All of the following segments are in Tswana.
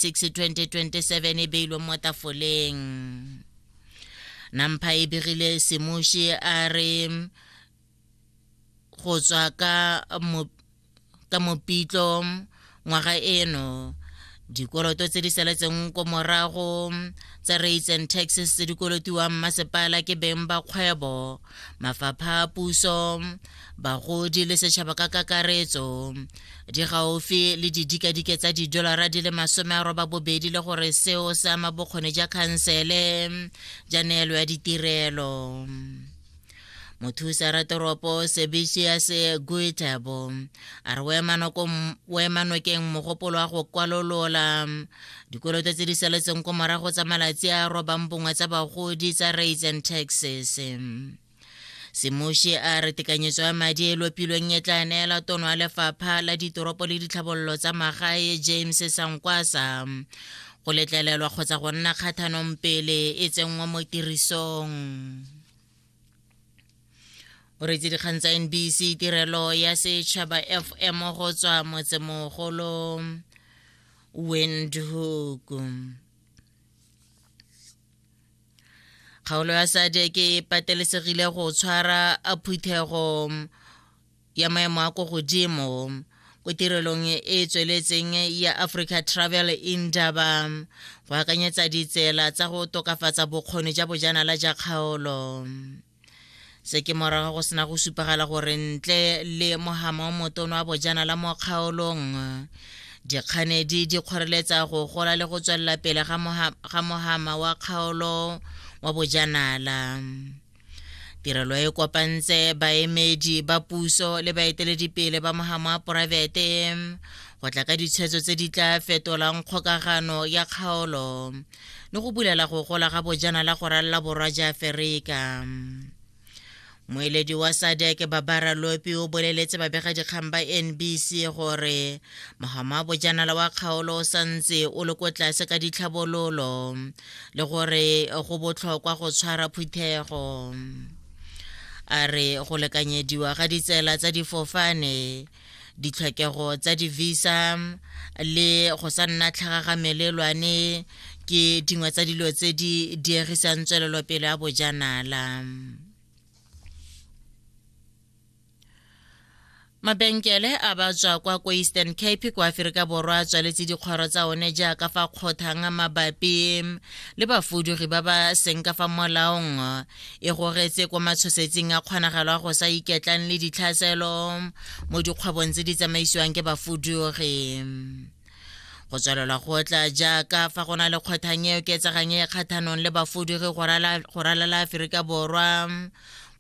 6 2027 e beilweng mo tafoleng nampha e begile semuši a re go tswa ka mo ka mopitlo ngwaga eno dikoloto tse di saletseng ko morago tsa rates and taxes tse di kolotiwang masepala ke beng ba kgwebo mafapha a puso bagodi le setšhaba ka kakaretso di gaufi le didikadike tsa didolara di le masome a roba bobedi le gore seo se ama bokgoni ja khansele ja neelo ya ditirelo mothusa ratoropo sebitius guitabo a re boemanokeng mogopolo wa go kwalolola dikoloto tse di saletseng ko morago tsa malatsi a robang bongwe tsa bagodi tsa rates and taxes semoshi a re tekanyetso ya madi e lopilweng e tla neela tono ya lefapha la ditoropo le ditlhabololo tsa magae james sankwasa go letlelelwa kgotsa go nna kgathanong pele e tsenngwa mo tirisong o retse dikgang tsa nbc tirelo ya setšhaba fm go tswa motsemogolo windhoek kgaolo ya sadek e patelesegile go tshwara phuthego ya maemo a ko godimo ko tirelong e e tsweletseng ya africa travel indaba go akanyetsa ditsela tsa go tokafatsa bokgoni ja bojanala ja kgaolo se ke morago go sena go supagala gore ntle le mohama o motono wa bojana la mo kgaolong dikganedi di kgoreletsa go gola le go tswelela pele ga mohama wa kgaolo wa bojanala tirelo e kopantse baemedi ba puso le baeteledipele ba mohama wa poraefete go tla ka ditshwetso tse di tla fetolang kgokagano ya kgaolo le go bulela go gola ga bojanala go ralla borwa ja aferika moeledi wa sadek babara lopi o boleletse babegadikgang ba nbc gore mogama wa bojanala wa kgaolo o santse o le ko tlase ka ditlhabololo le gore go botlhokwa go tshwara phuthego a re go lekanyediwa ga ditsela tsa difofane ditlhokego tsa di-visa le go sa nna tlhagagamelelwane ke dingwe tsa dilo tse di diegisang tswelelopele ya bojanala mabenkele a ba tswa kwa ko eastern cape kwa aferika borwa a tswaletse dikgoro tsa one jaaka fa kgothang mabapi le bafudugi ba ba seng ka fa molaong e goretse kwa matshosetsing a kgonagalo a go sa iketlang le ditlhaselo mo dikgwebong tse di tsamaisiwang ke bafudugi go tswelela go tla jaaka fa go na le kgothang e oketsegang e kgathanong le bafudugi go ralala aforika borwa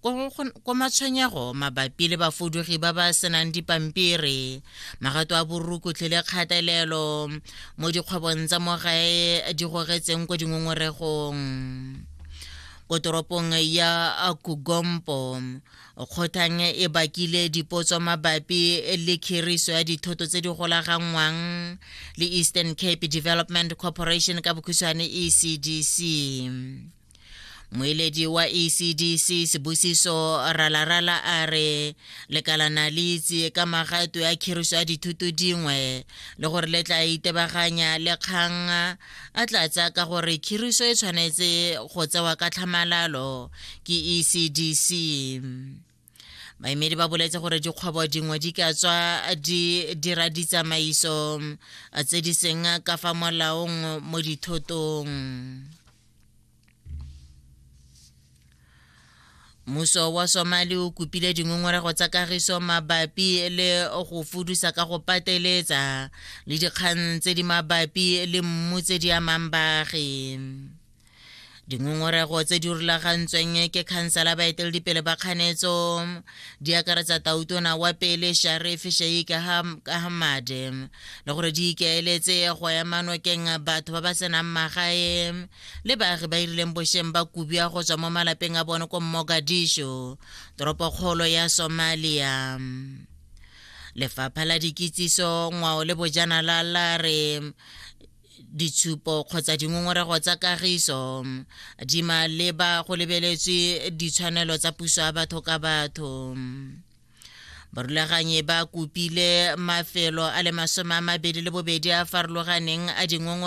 ko matshwenyego mabapi le bafudugi ba ba senang dipampiri magato a borukutlhi le kgatelelo mo dikgwebong tsa mo gae di gogetseng ko dingongoregong ko toropong ya kugompo kgothang e bakile dipotso mabapi le khiriso ya dithoto tse di golaganngwang le eastern cape development corporation ka bokhutshwane ecdc moeledi wa ecdc sebusiso ralarala a re lekalana le itse ka magato ya khiriso ya dithuto dingwe le gore le tla itebaganya le kgang A tlatsa ka gore khiriso e tshwanetse go tsewa ka tlhamalalo ke ECDC. Baemedi ba boletse gore dikgwebo dingwe di ka tswa di dira ditsamaiso tse di seng ka fa molaong mo dithotong. mmuso wa somali o kopile dingongorego tsa kagiso mabapi le go fudusa ka go pateletsa le dikgang tse di mabapi le mmu tse di amang baagi dingongorego tse di rulagantsweng ke khansela baeteledipele ba kganetso di akaretsa tautona wa pele sharif sheik ahmad le gore di ikaeletse go ema nokeng batho ba ba senang magae le baagi ba irileng bosheng ba kubia go tswa mo malapeng a bone ko mogadisho toropokgolo ya somalia lefapha la dikitsiso ngwao le bojanala la re ditshupo kgotsa dingongorego tsa kagiso di maleba go lebeletswe ditshwanelo tsa puso ya batho ka batho barulaganyi ba kopile mafelo a le masome a mabedi le bobedi a farologaneng a dingongore